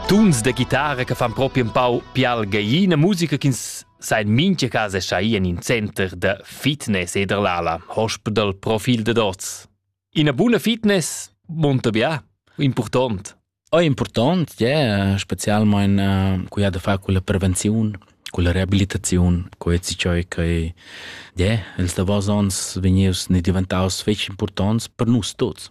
Tuns da chitarra che fan propi un pau pial gaiina musica ch'ins sa in mincha casa schai in in center da fitness e der l'ala, hospital profil de dots. Ina buna fitness monta bia, important. È important, yeah, specialmein uh, cu ha da far con la prevenzione, con la rehabilitazione, con ezi ciò che yeah, ils davos ons vegnius ne diventaus fetg importants per nus tuts.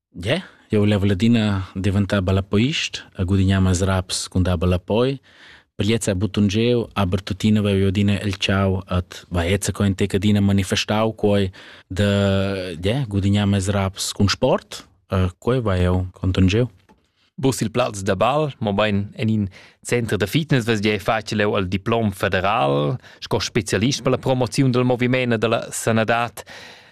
Ie, jeu level adina diventar ballapeist e gudignar meis raps cun dar ballapoi. Per gliez ha buttun jeu, aber tuttina vev'jeu adina el tgau et va eza co in tec adina manifestau quei da ie, gudignar meis raps cun sport e quei va jeu contun jeu. Bus il plaz da bal, mobain en in center da fitness vesgia facile leu al diplom federal sco specialist per la promoziun del moviment e della sanadad.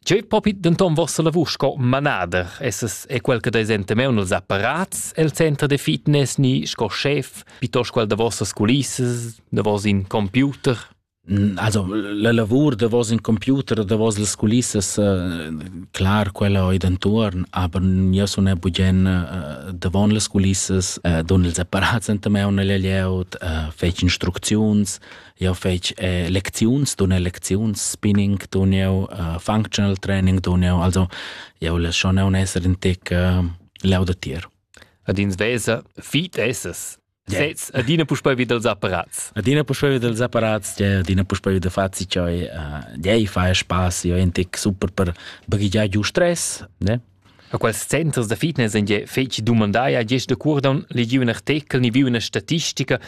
Cheu propi denton vossa lavur sco manader, esses è quel che desente meu nels apparats el center de fitness ni sco chef, piuttosto quel da vossas culissas, da vos in computer. Also la lavur davos in computer o davos las culissas uh, clar quella oi dentuorn, aber io sun er bugen uh, davon las culissas, uh, dun ils apparats enta me un agl layout, uh, fetg instrucziuns, io fetg eh, lecziuns, dun er lecziuns, spinning dun eu, uh, functional training dun eu, also io las schon un esser in tec uh, laudatir. Ad ins vesa fit esses. Sez, adina puspei vid els apparats. Adina puspei vid els apparats, adina puspei vid fazi choi, dei fa spaß, io en tic super per baghigiar giu stress, ne? A quels centers da fitness en je feci dumandai a gest de curdon legiu un artikel ni viu una statistica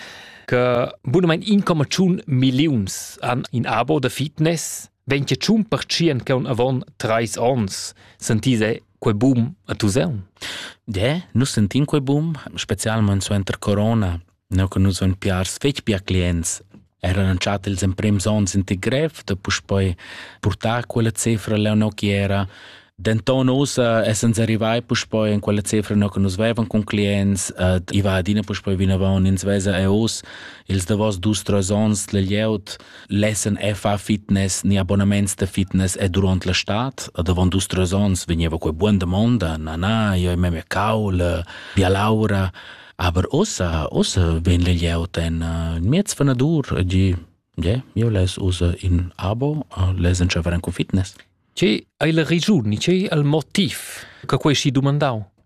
che bunament 1,1 milliuns han in abo da fitness, wenn che tschun percient che un avon treis ons sentise quei bum a Tuseun? De, nus sentin quei bum, specialment suenter corona, no che nus ein piars fetg pia clients. Eran entschat ils emprems onns in ti grev da puspei purtar quella cifra leo che era. Denton ussa essens arrivai puspei in quella cifra no che nus vevan con clients, et i va adina puspei vinavon, ins vesa e us ils davos dus tres ons le lieut L'essen è fa fitness ni abbonaments de fitness è durant la stad. Davon dus tres ons vegneva quei buon damonda, na na, io meme caul, via laura. Aber ossa, ossa ven le glieut en uh, miez vanadur, di, yeah, io les usa in abo, uh, les enceveran con fitness. Ce hai la regiun, ni ce hai il motiv che quei si domandau?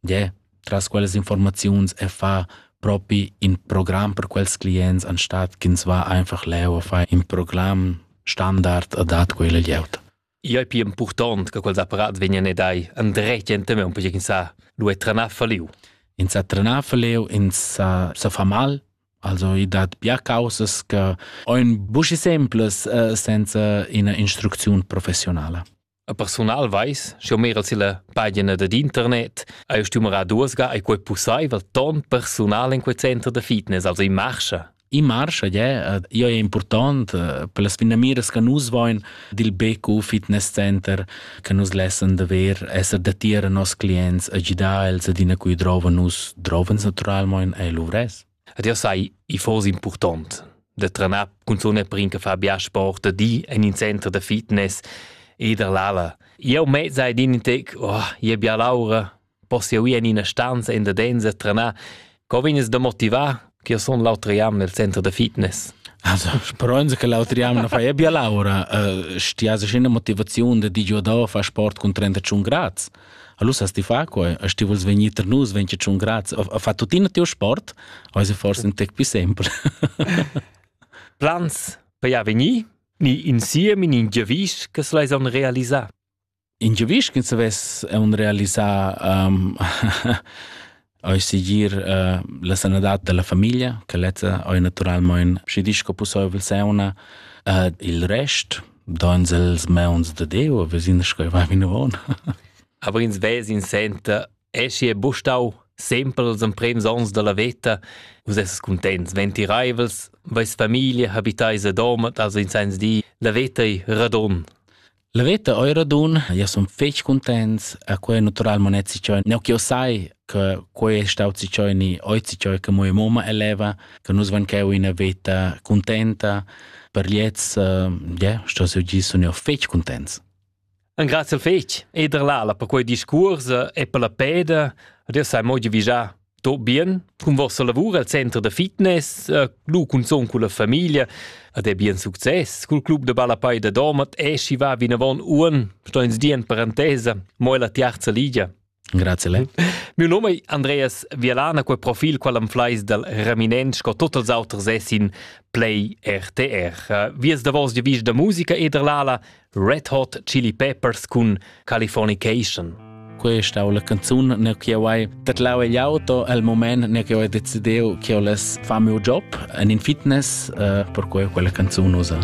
Gie, tras quellas informaziuns e fa propi in program per quels clients anstatt ch'ins va einfach leu a far in program standard a dat quella glieud. Ia è pi impurtant che quels apparats vegnan ed ai andret ente me un poche sa lu è tranar faliu. In sa tranar faliu, in sa sa fa mal, also i dat bia causas che ein buschi simples uh, senza ina instrucziun professionala. A persunal veis, sch'eu meral silla pagina dad internet, eir stumera duos ga ei quei pussaivel ton persunal in quei center da fitness, also in Marscha. In Marscha, yeah, io è important eh, per las finamiras che nus voin dil BQ Fitness Center che nus lessen da ver esser datier a nos clients a gidar els ad ina cui drova nus drovens naturalmoin ei luvres. Ed jau sai, i foss impurtont da trenar cunzun er per in che fa bia sport, da di en in center da fitness e da l'ala. Jau mez hai din in tec, oh, i è bia l'aura, poss jau ir en ina stanza en da densa trenar. Co vegnes da motivar che io sun l'autra jam nel center da fitness? Also, sperons che l'altri anno na fai bia laura, uh, stia se scena motivazione da di giù da far sport con 38 gradi. Allora ti fa quai, e ti vuls vegnir tra nus 25 grad, a fa tuttina teu sport, hai se forse un tec più sempre. Plans per ja venir ni insieme in ingiavis che se leis on realisar? In giavis che se ves un realisar um, Ei segir uh, la sanadad dalla famiglia, che lezza ei naturalmein schi disco pusseivel sauna. Uh, il rest, dans els meuns de Deo, wir sind schon bei Minone. Aber ins Wes in senta, esci e bustau sempre als emprems ons dalla veta, vus esses contents, ventireivels, veis famiglia habitais a domat, also in sens di, la veta ei radon. La veta oi radun, ia sun fetg cuntents, a quei natural mon ets ciò, ne che sai che quei è staut si ciò ni oi si ciò che mia mamma eleva, che nus van cheu in veta contenta, per liets, yeah, sto se gi sun io fetg contents. Un grazie fetg, eder lala per quei discurs e per la peda, dir sai mogi vigià. tot bien cun vostra lavur al center da fitness, lu cunzon con la famiglia ed è bien success. Cul club de Balapai da Domat e si va vinavon uon, sto ins di en parentesa, mo la tiarza ligia. Grazie le. Mio nome è Andreas Vialana, quel profil qual am flais dal Reminent sco totals auters essin play RTR. Vies da vos di vis da musica e dall'ala Red Hot Chili Peppers cun Californication. Questa è la canzone ne che ho tatlau egl auto al moment ne che ho decidiu che ho les far mio job en in fitness uh, per cui quella canzone usa.